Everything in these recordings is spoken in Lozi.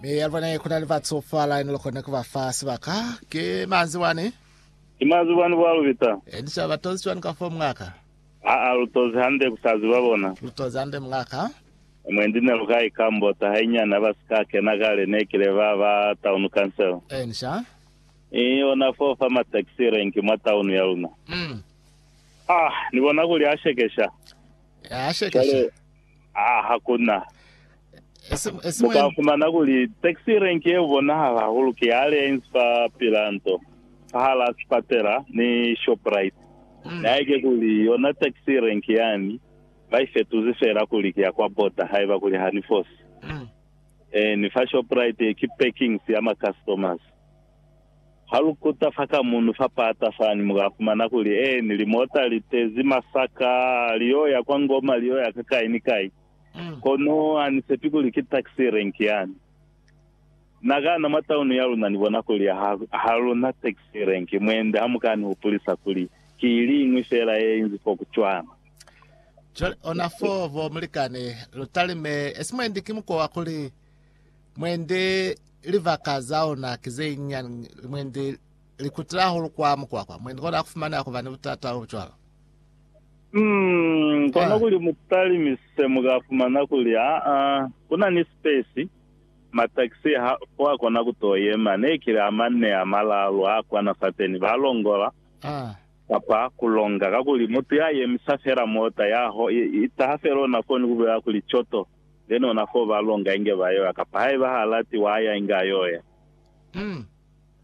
Mi yalibone kuna ni batsofala ni lokona kubafa sibaka. Ki manzi wani. Ki manzi wani bwa lubita. Ni sa batozi cwani ka fo mungaka? Aa lutozi hande kusaziba bona. Lutozi hande mungaka. Mwendi nelukai ka mbota hainyani habasika kena kale nekile ba ba town council. Eni sha. I ona fo fa ma taxi rank mwa town ya luna. Mm. Ah, ni bona kuli ha shekesha. Ya shekesha. Kale. Haa hakuna. Muka fumana kuli taxi rank yeo bonahala hahulu ki ya Alliance fa pila nto, fahala sipatela ni Shoprite. Mm. Naike kuli yona taxi rank yani ba ifetuzi fela kuli ki ya kwa border haiba kuli ha ni fosi. Mm. Ee, ni fa Shoprite ki parkings ya ma customers. Ha lu kuta fa ka munu fa paata fani, mu ka fumana kuli eeni limota li tezi masaka li yo ya kwa Ngoma, li yo ya ka kai ni kai. Kono ha ni sepi kuli ki taxi rank yani. Na ka na mwa taunu ya luna ni bona kuli ha, ha lu na taxi rank, mwendi ha mu ka ni hupulisa kuli ki ili iñwi feela ye inzi fo ku cwana. Cwale ona foo, bo mulikani, lu talime, esi mwendi ki mukwa wa kuli, Mwendi libaka za ona ki ze nyinyani, mwendi li kutila hahulu kwa mukwakwa. Mwendi kona ha ku fumaneha ku ba ni butata bo cwalo. Mm, kono kuli mu talimi se mu ka fumana kuli, aa, ku na ni sipesi, matakisi ha fo a kona ku t'o yema. Ne ki li a manne, a malaalu, a kwana fateni, ba longola, kapa ku longa. Kakuli mutu ya yemisa fela mota, ya ho, i taha fela ona foni ku bulela kuli, Coto! Then ona foo ba longa inge ba yoya, kapa haiba ha lati wa ya inge a yoya.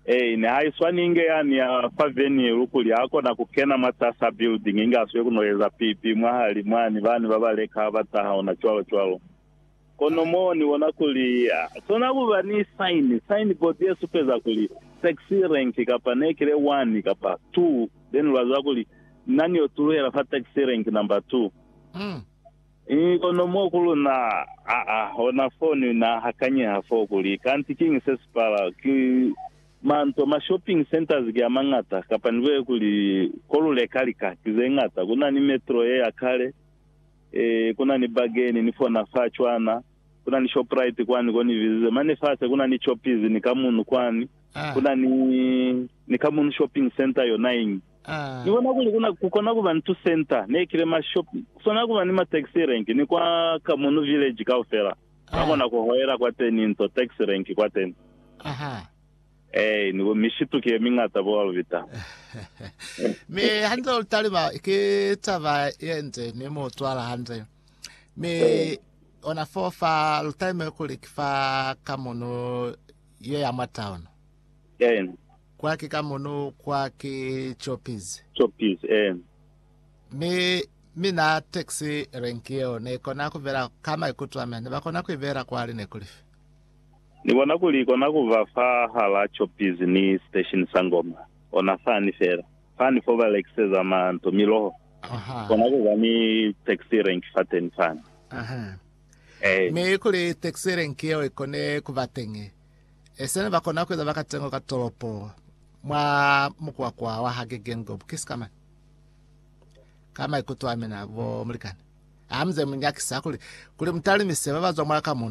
Ei, ne ha iswani inge yani ya fa venue lukuli ha kona ku kena mwatasa building inge a swiye ku no eza pipi mwahali mwani, bani ba ba leka ha ba taha ona cwalo cwalo. Kono mo ni bona kuli ha kona ku ba ni sign, sign board ye supeza kuli taxi rank kapa ne kile one kapa two, then lwa ziba kuli nna ni yo tuluhela fa taxi rank number two. Ii, Kono mo ku luna, aa, hona fo ni na hakanyeha foo kuli, kanti kiñi se si pala? Ki manto, ma shopping centers ki a mañata, kapa ni bolela kuli, ko lu leka lika ki ze ñata. Ku na ni Metro ye ya kale, ee, ku na ni Bargain ni fona fa cwana, ku na ni Shoprite kwani ko ni bizize. Mane fase ku na ni Choppies ni Kamunu kwani, ku na ni, ni Kamunu Shopping Centre yona iñi. Ni bona kuli kuna, ku kona kuba ntu center, ne kile ma shop, ku swana kuba ni ma taxi rank, ni kwa ka muno village kaufela ba kona ku hoela kwateni nto taxi rank kwateni. Aha. Ee, ni bo mishitu ki ye mingata bo Alvita. Mi hande lu taliba ki taba ye nde ni mu twala hande. Mi ona fo fa lu talime kuli ki fa ka muno ye ya mwa town. Ee. Kwaki ka mono kwa ki Choppies. Choppies, ee. Mi, mi na taxi rank yeo ne kona ku bela ka maikuto a mea. Ne ba kona ku i bela kwale ne kuli fi. Ni bona kuli i kona ku ba fa hala Choppies ni station sa Ngoma. Ona fani fela. Fani fo ba lekiseza ma nto, miloho. Aha. Kona ku ba ni taxi rank fateni fani. Aha. Ee. Mi kuli taxi rank yeo i kone ku ba teñi, Esina ne ba kona ku eza bakatengo ka tolopo mwa mukwakwa wa ha Gegengob kisi ka mane. Ka maikuto a mina, bo mulikani, hamize mu nyakisa kuli, kuli mutalimise ba ba zwa mwa ka muno.